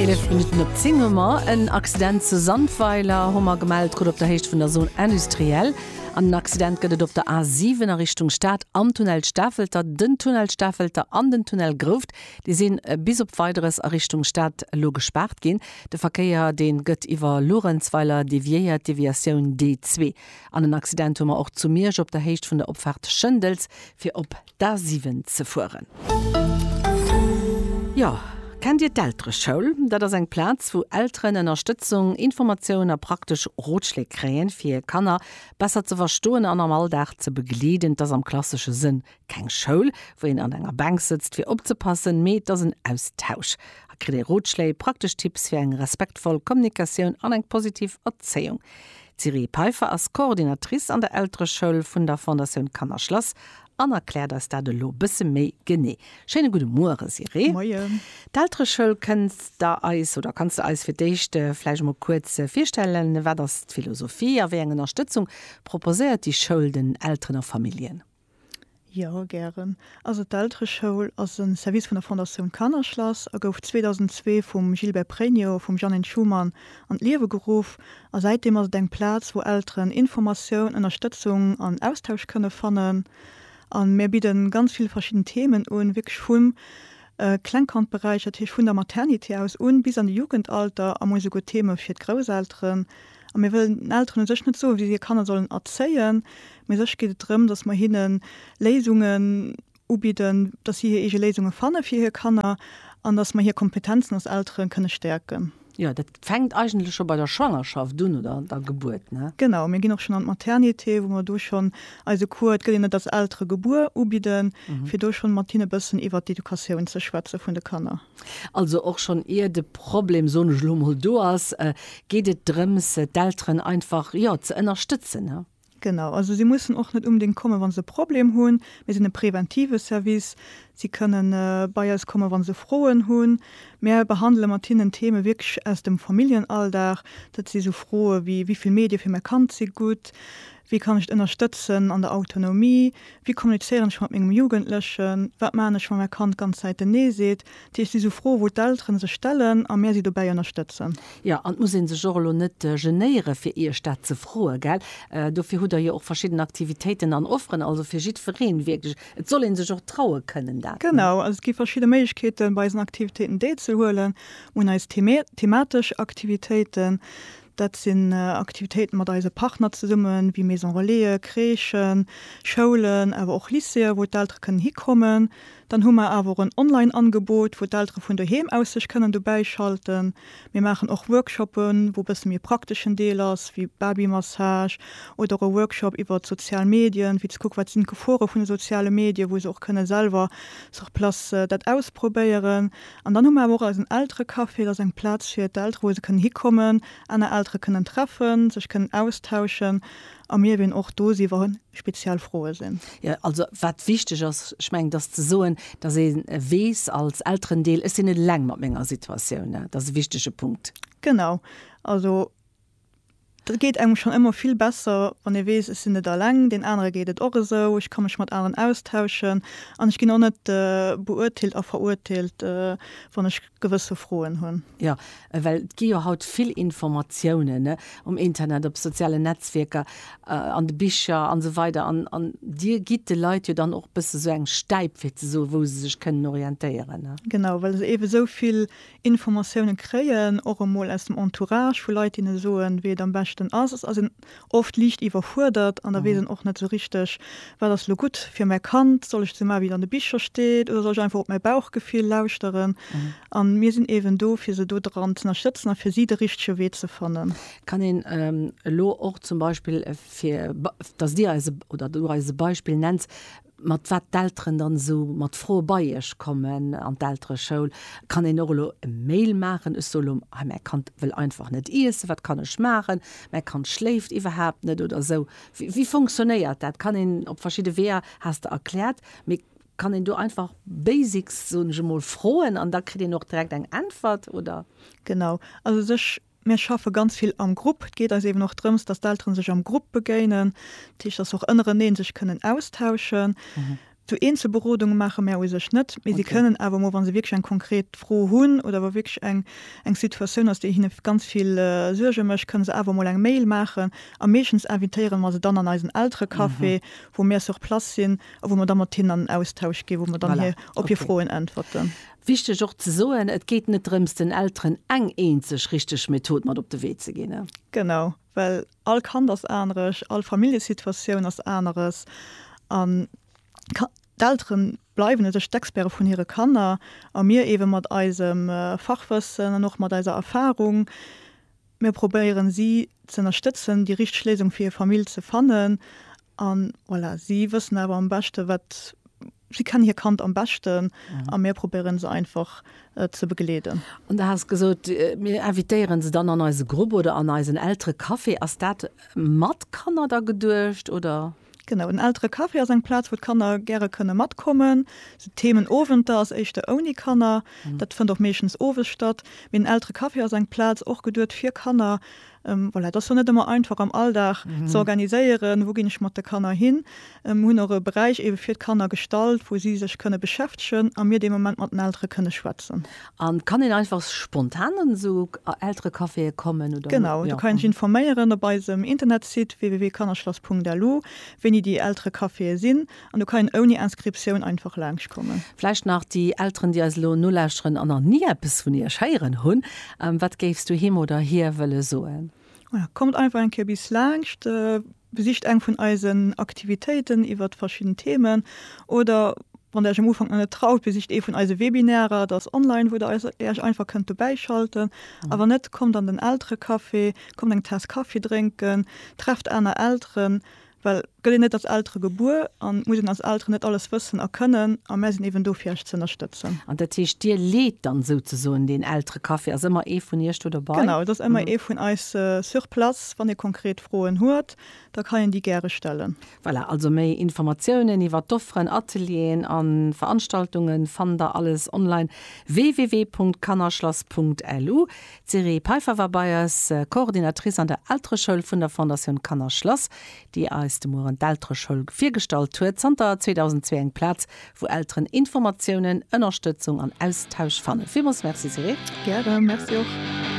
Eelef Minutten op 10 hu mer en Accident zu Sandweiler, hu mer gemellt krut, op der Héicht vun der Zone industrielle. An en Accident gëtt et op der A 7 a Richtung Stad am Tunnel Stafelter. Den Tunnel Stafelter an den Tunnel Grouft, déi si bis op Weideres a Richtung Stad elo gespaart ginn. De Verkéier dee gëtt iwwer Luerenzweiler deviéiert, Deviatioun D2. An en Accident hu mer och zu Miersch op der Héicht vun der Opfaart Schëndels fir op d'A7 ze fueren. Jo, kennt Dir d'Eltereschoul? Dat ass eng Plaz, wou Elteren Ënnerstëtzung, Informatiounen a praktesch Rotschléi kréien, fir hir Kanner besser ze verstoen an am Alldag ze begleeden. Et ass am klassesche Sënn keng Schoul, wou een an enger Bänk sëtzt, fir opzepassen, mee et ass en Austausch. Hei kritt ee Rotschléi, praktesch Tipps fir eng respektvoll Kommunikatioun an eng positiv Erzéiung. D'Sirée Peiffer ass Coordinatrice an der Eltereschoul vun der Fondatioun Kannerschlass an erkläert eis dat elo bësse méi genee. Schéine gudde Muere Sirée. Moien. D'Eltereschoul kënns de eis, oder kanns de eis fir d'éischt vläicht emol kuerz virstellen, wat ass d'Philosophie a wéi eng Ënnerstëtzung proposéiert déi Schoul den Elteren a Familljen? Jo, gären. Also d'Eltereschoul ass e Service vun der Fondatioun Kannerschlass a gouf 2002 vum Gilbert Pregno a vum Jeannine Schumann an d'Liewe geruff. A säitdeem ass et eng Plaz, wou Elteren Informatioun, Ënnerstëtzung an Austausch kënne fannen. A mir bidde ganz vill verschidden Themen un, wierklech vum Klengkandberäich, dat heescht vun der Maternité aus un, bis an de Jugendalter a mol esouguer Theme fir d'Grousselteren. A mir wëllen den Elteren u sech net soen, wéi si hir Kanner sollen erzéien, Mee sech geet et drëm, dass mer hinne Léisungen ubidden, dass si hir eege Léisunge fanne fir hir Kanner an dass mer hir Kompetenzen als Eltere kënne stäerken. Jo, dat fänkt eigentlech scho bei der Schwangerschaft un oder der Gebuert, ne? Genau, mir ginn och schonn an d'Maternité, wou mer do schonn eise Cours, et gëtt een net als Eltere gebuer, ubidden, fir do schonn mat hinne e bëssen iwwert d'Educatioun ze schwätze vun de Kanner. Also och schonn ier de Problem, soen ech elo mol, do ass, geet et drëms, d'Elteren einfach, jo, ze ënnerstëtzen, ne? Genau, also si mussen och net unbedéngt kommen, wa se e Problem hunn. Mir sinn e preventive Service. Si kënne bei eis kommen, wa se Froen hunn. Mir behandele mat hinnen Theeme wierklech aus dem Familljenalldag. Dat si sou Froe wéi, Wéi vill Medie fir mäi Kand si gutt? Wéi kann ech et ënnerstëtzen an der Autonomie? Wéi kommunizéieren ech mat mengem Jugendlechen? Wat maachen ech, wa mäi Kand d'ganz Zäit en Nee seet? Dat heescht, si sou Froen, wou d'Elteren sech stellen a mär si dobäi ënnerstëtzen. Jo, an et muss ee sech och elo net genéieren, fir Iech dat ze froen, gell? Dofir hutt Der jo och verschidden Aktivitéiten an Offeren, also fir jiddwereen wierklech. Et soll ee sech och traue kënnen, dat. Genau, also et gi verschidde Méiglechkeeten, bei eisen Aktivitéiten deelzehuelen. Mir hunn eis thematesch Aktivitéiten. Dat sinn Aktivitéiten mat eise Partner zesummen, wéi Maison-relaisen, Crèchen, Schoulen, awer och Lycéeën, wou d'Eltere kënnen hikommen. Dann hu mer awer och en Online-Angebot, wou d'Eltere vun doheem aus sech kënnen dobäischalten. Mir maachen och Workshoppen, wou e bësse méi e prakteschen Deel ass, wéi Babymassage oder och e Workshop iwwert d'sozial Medien, fir ze kucken, wat sinn d'Gefore vun de soziale Medien, wou se och kënne selwer sur place dat ausprobéieren. An dann hu mer awer och eisen Elterecafé, dat ass eng Plaz fir d'Eltere, wou se kënnen hikommen, aner Eltere kënnen treffen, sech kënnen austauschen. A mir ween och do si wann speziell Froe sinn. Jo, also wat wichteg ass, ech mengen, dass ze soen, dass ee weess als Elterendeel, ech sinn net eleng mat menger Situatioun, dat ass e wichtege Punkt. Genau, also et geet engem schonn ëmmer vill besser, wann ee weess, ech sinn net eleng, deen anere geet et och esou, ech ka mech mat aneren austauschen an ech ginn och net beuerteelt a verurteelt, wann ech. gewësse Froen hunn. Jo, well et gi jo haut vill Informatiounen, ne, um Internet, op sozialen Netzwierker, an de Bicher an esou weider an, an Dir gitt de Leit jo dann och e bësse sou eng Stäip, fir ze soen, wou se sech kënnen orientéieren, ne? Genau, well se eebe sou vill Informatiounen kréien, och emol aus dem Entourage vu Leit, deene soen, wéi et am beschten ass. Et ass en oft liicht iwwerfuerdert an da weess en och net esou richteg, Wat ass elo gutt fir mäi Kand? Soll ech ze maachen, wéi et an de Bicher steet, oder soll ech einfach op mäi Bauchgefill lauschteren? A mir sinn eeben do, fir se do dran z'ënnerstëtzen a fir si de richtege Wee ze fannen. Kann een elo och zum Beispill, fir datt Dir eis oder Du eis e Beispill nenns, mat wat d'Elteren dann esou mat Froe bei Iech kommen an d'Eltereschoul, kann een och elo e Mail maachen, ech soe elo hei mäi Kand wëll einfach net iessen, wat kann ech maachen, mäi Kand schléift iwwerhaapt net oder esou. Wéi fonctionnéiert dat? Kann een op verschidde Weeër, has de erkläert, mee kann een do einfach Basics, soen ech emol, froen an da kritt een och direkt eng Äntwert oder? Genau, also sech Mir schaffe ganz vill am Grupp. Et geet eis eeben och drëms, dass d'Elteren sech am Grupp begéinen, dat heescht, dass se och ënnereneen sech kënnen austauschen. Sou Eenzelberodunge maache mär u sech net, mee si kënnen awer emol, wa se wierklech eng konkret Fro hunn oder wa wierklech eng eng Situatioun ass, déi hinne ganz vill Suerge mécht, kënne se awer emol eng Mail maachen. A meeschtens invitéiere mer se dann an eisen Elterecafé, wou mir sur place sinn a wou mer da mat hinnen an den Austausch ginn, wou mer dann hir op hir Froen äntwerten. Wichteg och ze soen, Et geet net drëms, den Elteren eng eenzeg richteg Method mat op de Wee ze ginn. Genau, well all Kand ass aneresch, all Familljesituatioun ass aneres an d'Eltere bleiwen u sech d'Experte vun hire Kanner a mir eebe mat eisem Fachwëssen an och mat eiser Erfarung. Mir probéieren si ze ënnerstëtzen, déi richteg Léisung fir hir Famill ze fannen. A voilà, si wëssen awer am beschte wat, si kennen hir Kand am beschten a mir probéieren se einfach ze begleeden. An du has gesot, mir invitéieren se dann an eise Grupp oder an eisen Elterecafé. Ass dat mat Kanner da geduecht oder? Genau, den Elterecafé ass eng Plaz, wou d'Kanner gäre kënne matkommen. Sou Themenowenter ass éischter ouni Kanner, dat fënnt och meeschtens owes statt. Mee den Elterecafé ass eng Plaz och geduet fir Kanner. Voilà, et ass jo net ëmmer einfach am Alldag ze organiséieren, wou ginn ech mat de Kanner hin. Mir hunn och e Beräich eebe fir d'Kanner gestalt, wou si sech kënne beschäftegen a mir dee Moment mat den Eltere kënne schwätzen. An kann een einfach spontan an esou Elterecaféen kommen oder? Genau, du kann een sech informéieren op eisem Internetsite www.kannerschlass.lu wéini déi Elterecaféen sinn an du kann een ouni Inscriptioun einfach laangscht kommen. Vläicht nach déi Elteren déi eis elo nolauschteren an nach ni eppes vun iech héieren hunn, wat géifs du him oder hir wëlle soen? Voilà, kommt einfach eng Kéier bis laangscht. Besicht eng vun eisen Aktivitéiten iwwert verschidden Themen oder wann der iech am Ufank nach net traut, besicht ee vun eise Webinärer, dat ass online, wou der iech einfach kënnt dobäi schalten. A wann net, kommt an den Elterecafé, kommt eng Taass Kaffi drénken, trefft aner Elteren, well et gëtt een net als Eltere gebuer an et muss een als Elteren net alles wëssen a kënnen a mär sinn eben do fir iech ze ënnerstëtzen. An dat heescht, dir leet dann souzesoen deen Elterecafé, ass ëmmer ee vun iech do dobei? Genau, et ass ëmmer ee vun eis sur place, wann ee konkret Froen huet, da ka hien déi gäre stellen. Voilà, also méi Informatiounen iwwer d'Offeren, Atelieren a Veranstaltunge fannt der alles online, www.kannerschlass.lu. D'Siré Peiffer war bei eis, Coordinatrice an der Eltereschoul vun der Fondatioun Kannerschlass, déi eis de Mueren d'Eltereschoul virgestallt huet, zanter 2002 eng Plaz, wou Elteren Informatiounen, Ënnerstëtzung an Austausch fannen. Villmools Merci, Siré. Gäre, Merci och.